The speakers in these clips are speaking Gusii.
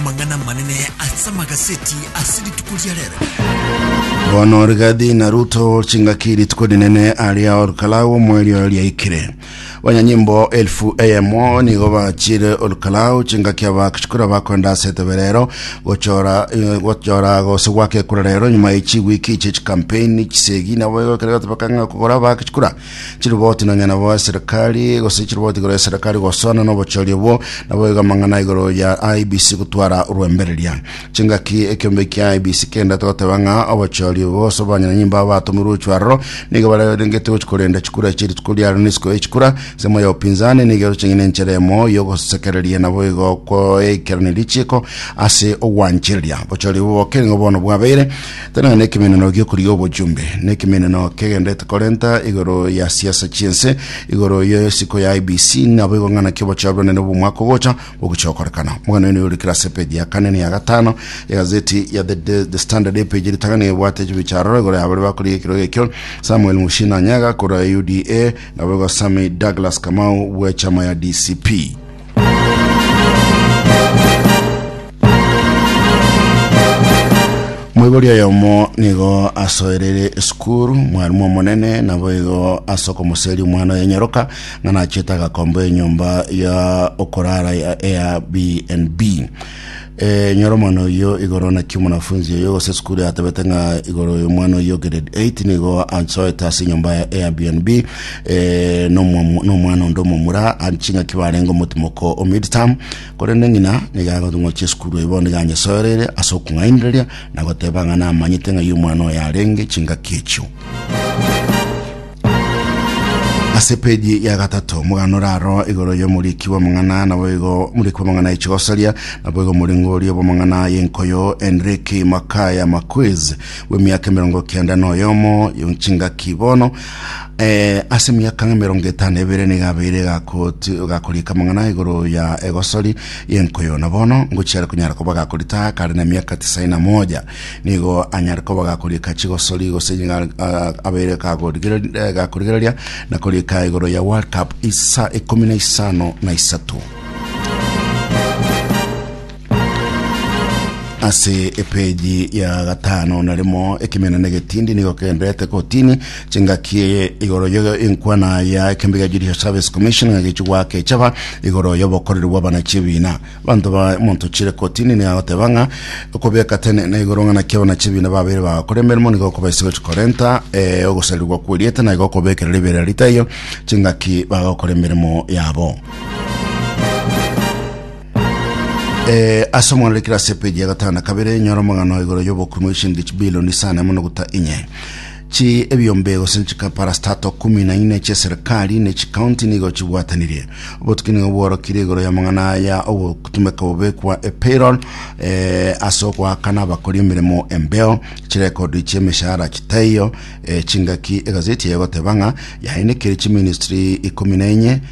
Amang'ana amanene ase amagaseti ase rituko ria rero. Bono Rigathi na Ruto chingaki rituko rinene aria Olkalau omweri oyo riaikire. Banyanyimbo elfu eyemo nigo bachire Olkalau chingaki abakchikura bakwenda ase etebe rero gochora eh, gochora gose gwaka ekura rero nyuma ye chiwiki che chikampeni chisegi nabo egokera gotebeka ng'a kogora abakchikura Chiriboti nonyene bo eserekari gose chiriboti igoro eserekari gosana n'obochori obwo nabo iga amang'ana igoro ya IBC gotwara orwembereria. Chingaki ekiombe kia IBC kendete goteba ng'a obochori obwo gose obwanyinanyi mbao batomirwe gochwa aroro nigo barerengeti gochi korenda chikura echi rituko riaro n'isiko ye chikura. Ensemo ya opinzani nigo eroche ng'a nenchera emo yogosekereria nabo igo koekerania richiiko ase ogwanchereria. Obochori obwo bokere nigo bono bwabeire Tana nekemeneno gi'okorigia obojumbe, nekemeneno kegenderete korenta igoro ya siasa chi'ense, igoro ye isiko ya IEBC, nabo igo ng'ana ki obochao bw'Obonene bw'omwaka ogocha bogochia gokorekana. Omogani oino oyorikire ase epeji ya kane na ya gatano ya gazeti ya The, The, The Standard epeji ritang'ani ebwate echibicha aroro igoro ya baria bakorigia ekerogo ekio, Samuel Mushina Nyaga korwa UDA, nabo igo Sammy Douglas Kamau bw'echama ya DCP. Moibori oyomo nigo asoerere esukuru mwarimu omonene nabo igo ase okomoseria omwana oyo nyoroka ng'a nachete agakomba enyomba ya okorara ya Airbnb Eh, nyora omwana oyio igoro naki omonafunzi oyio gose sukuru yatebete ng'a igoro y'omwana oyio grade 8 nigo ansoete ase enyomba ya Airbnb eh, n'omwa- n'omwana onde omomura ari ching'aki barenge omotimoko o midterm korende ng'ina nigo agotong'ochia esukuru eye bono iga anyesoereire ase okong'ainereria na goteba ng'a namanyete ng'ai omwana oyo arenge chingaki echio ase peji ya gatato omogano oraro igoro y'omoriki bw'amang'ana naboigo omoriki bw'amang'ana echigosaria naboigo omoringo oria bw'amang'ana y'enkoyo enrique makaya maquiz bw'emiaka emerongo kenda na oyomo chingaki bono eh, ase emiaka emerongo etano ebere niga abeire gakoti- gakorika amang'ana igoro ya egosori y'enkoyo na bono ngochiare konyara koba gakorita kare na emiaka tisaini na moja Nigo anyare koba gakoriika chigosori gose nying'a ah, abeire gakorigereria- eh, gakorigereria na koriika igoro ya World Cup isa ikumi na isano na isato. ase epeji ya gatano na rimo ekemena na egetindi nigo kendete kotini chingaki igoro yo enkwana ya ekembe ya judicial service commission ng'a gechi gwaka echaba igoro y'obokoreri bw'abana chebina Abanto ba omonto Chilekotini nigo agoteba ng'a okobeka tene na igoro ng'a naki abanachie ebiina babeire bagakora emeremo nigo okobaisa gochia korenta eh, ogosarirwa kw'erieta na igo okobekera ribeera ria taiyo chingaki bagokora emeremo yabo. Eh, ase omwana rikire ase epeji ya gatano na kabere nyora omogano igoro y'obokumi bw'eshilingi chibilioni isano na emo noguta inye Chi ebiombe gose nchika parastato kumi na ine chia serikali ne chikaunti nigo chibwatanirie. Obotuki nigo bworokire igoro ya mang'ana aya ogotumeka bobe kwa epayroll eh, ase ogoakana abakori emeremo embeo, chirekodi chia emeshahara chitaiyo, eh, chingaki egazeti eye egoteba ng'a yainekire chiministry ikomi na enye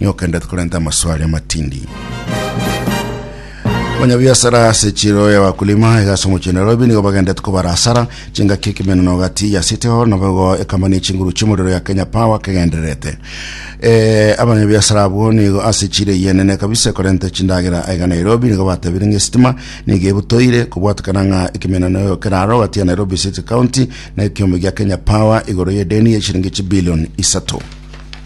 Nigo okenderete korenta amaswali amatindi. Abanyabiasara ase chiro ya wakulima egase omochie Nairobi nigo bagendete kobara asara chingaki ekemenano gati ya City Hall nabo igo ekamani chinguru chimorero ya Kenya Power kegendererete eh, abanyabiasara abwo nigo ase chire yenene kabisa ekorenta chindagera aiga Nairobi nigo batebire ng'a esitima nigo ebutoire kobwatekana ng'a ekemenano eo keraro gati ya Nairobi City County na ekiombe gia Kenya Power igoro y'edeni ya chiringi chibilioni isato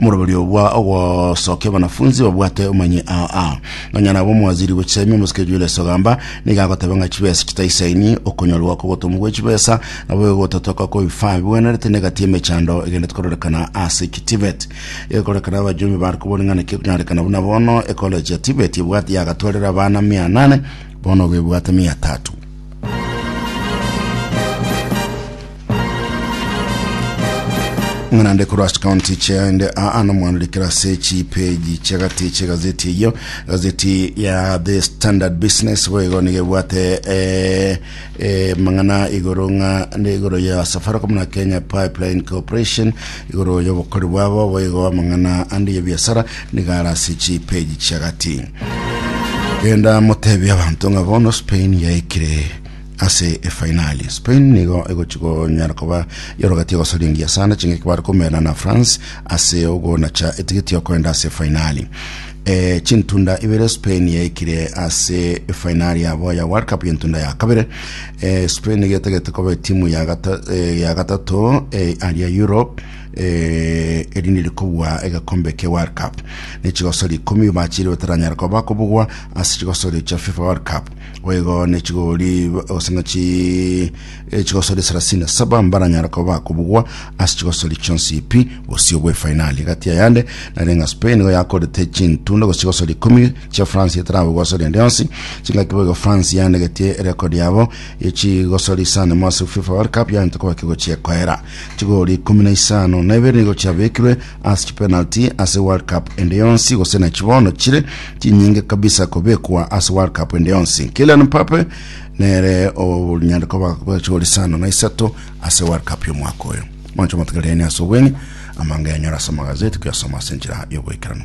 omoroberio bwa ogosokia abanafunsi babwate omanye aa nonya nabo omwaziri bw'echisaimi omosike Julius Ogamba niga agoteba ng'a chibesa chitaisaini okonyorwa kw'obotomwa bwe chibesa nabo egotatoka kobifa bigwenerete negati emechando egendete kororekana ase ki Tibet egokorekana abajumbe bare kobori ng'a naki ekonyorekana buna bono ecollege ya Tibet ebwate yagatwarera abana mia nane bono ogo ebwate mia tatu ng'ana nde korwa ase county chiaende aa nomwandirikira ase chipeji chiagati chiegazeti eyio gazeti ya the standard business boigo nigo ebwate eh, eh, mang'ana igoro ng'a ne igoro ya safaricom na kenya pipeline corporation igoro y'obokori bwabo boigo amang'ana ande ya biasara nigara ase chipeji chiagati genda motebia abanto ng'a bono spain yaikire ase efainali. Spain nigo egochi konyara koba yorogati egosoria engiya sana ching'aki bare komerana na France ase ogonacha etigeti yokoenda ase efainali. E, chintunda ibere Spain yaikire ase efainali yabo ya World Cup y'entunda ya kabere. E, Spain nigo etegete koba etimu ya gata- eh, ya gatato eh, aria Europe eh, erinde rikobua egekombe kia World Cup. Ne chigosori ikomi bachire bataranyara koba kobugwa ase chigosori cha FIFA World Cup. Boigo ne chigori gose ng'a chi chigosori thelathini na saba mbaranyare koba bakobugwa ase chigosori chionsi pi bosio bw'efainali. Egati ayande nere ng'a Spain nigo yakorete chintunda gose chigosori ikomi chia France etarabugwa asore ende yonsi. Chingaki boigo France yanegetie erekodi yabo ye chigosori isano emo ase FIFA World Cup yagenta koba kegochia ekoera. Chigori ikomi na isano na ibere nigo chiabekirwe ase chipenalty ase World Cup ende yonsi gose nachi bono chire chinyinge kabisa kobekwa ase World Cup ende yonsi. Kylian Mbappe nere onyare koba bachori sana na isato ase World Cup y'omwaka oyo. Mwancho motegerere ni ase obweng'e amanga yanyora ase amagazeti koyasoma ase enchera y'ogoikeranu.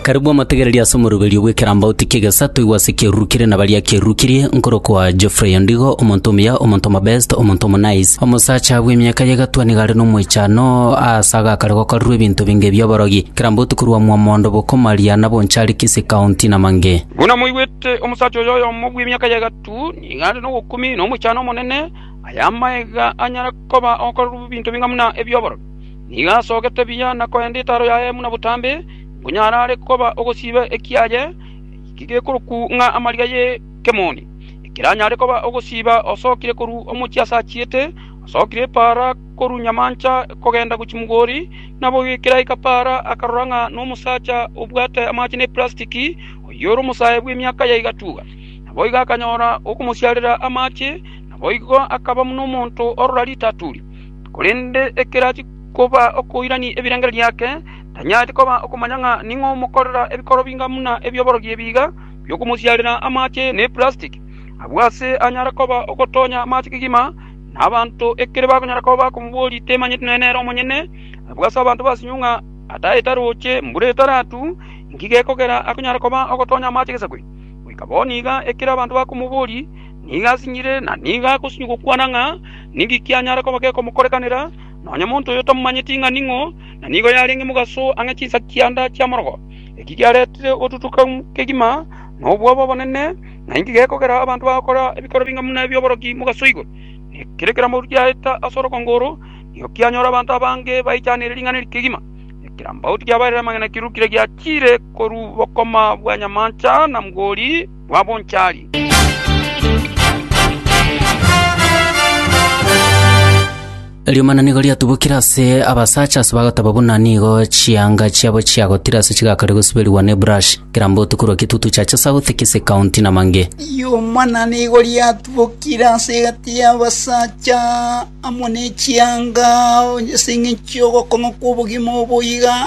Karabua amategereria ase omoroberio bw'ekerambauti ki'egesato toigwe ase kiarurukirie na baria kiarurukirie, nkorokwa Geoffrey Ondigo, omonto omuya, omonto omobest, omonto omonaice. Omosacha bw'emiaka y'egatwa nigo are nomoichano aase agakare gokorerwa ebinto binge bi'oborogi, kerambauti korwa Mwamondo, Bokomaria, na Bonchari, Kisii County, na mang'e. Buna moigwete, omosacha oyo oyomo bw'emiaka y'egatwa nigo are nobokumi na omoichano omonene, aye amaega anyare koba okorerwa ebinto binga buna ebi'oborogi. Nigo asogete buya na koenda etaro yaye buna botambe, Onye arare koba ogosiba ekiaye gekorokwa ng'a amariga y'ekemoni, ekeranyare koba ogosiba osokire korwa omochie ase achiete, osokire epaara korwa nyamancha kogenda gochia mogori, naboigo ekeraika paara akarora ng'a nomosacha obwate amache ne plastiki, oyio ore omosae bw'emiaka ya egatuba. Naboigo akanyora okomosiarera amache, naboigo akaba buna omonto orora ritaturi. Korende ekero achia koba okoirania ebirengererio ake, Tanyareti koba okomanya ng'a ning'o omokorera ebikoro binga buna ebi'oborogi ebi iga bi'okomosiarera amache na eplastiki. Agwo aase anyare koba ogotonya amache kegima, na abanto ekero bakonyara koba bakomoboria temanyeti nonya nere omonyene. Agwo aase abanto basinyiwe ng'a ata etaroche, mbura etaratu, inki gekogera akonyara koba ogotonya amache gesakwe? Goika bo niga ekero abanto bakomoboria, nigo asinyire na nigo agosinyiwa gokwana ng'a ninki kianyare koba gekomokorekanera, nonya monto oyo tamomanyeti ng'a ning'o. na nigo yarenge mogaso ang'e chinsa chianda chi'amorogo. Eki giaretire ogotutuka kegima na obwoba obonene, na inki gekogera abanto bagokora ebikoro bing'amu na ebi'oboroki mogaso igoro? Ekero ekeramo giaeta ase orogongo oro, nigo kianyora abanto abange baichanire ring'ana eri kegima. Ekerambaoti kiabaeire amang'ana kirurukire giachiire korwa bokoma bwa nyamancha na mgori, bw'abonchari. Riomana nigo riatubokire ase abasacha ase bagoteba buna nigo chianga chiabo chiagotire ase chigakarire gosuberigwa ne brush kera mbotu korwa Kitutu Chacha South, Kisii County na Mange. Riomana nigo riatubokire ase egati y'abasacha amo nechianga onye ase eng'encho y'ogokong'a kw'obogima obo iga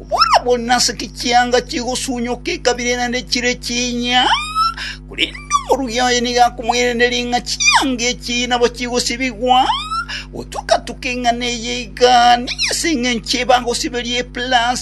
Buna naseki chianga chigosunyoka ekabira eye naende chire chinya, korende omorugi oye nigo akomoiraneria ng'a chianga echi nabo chigosibigwa, gotuka-tuka eng'ana eye iga nigo ase engencho eye bagosiberia epulasi.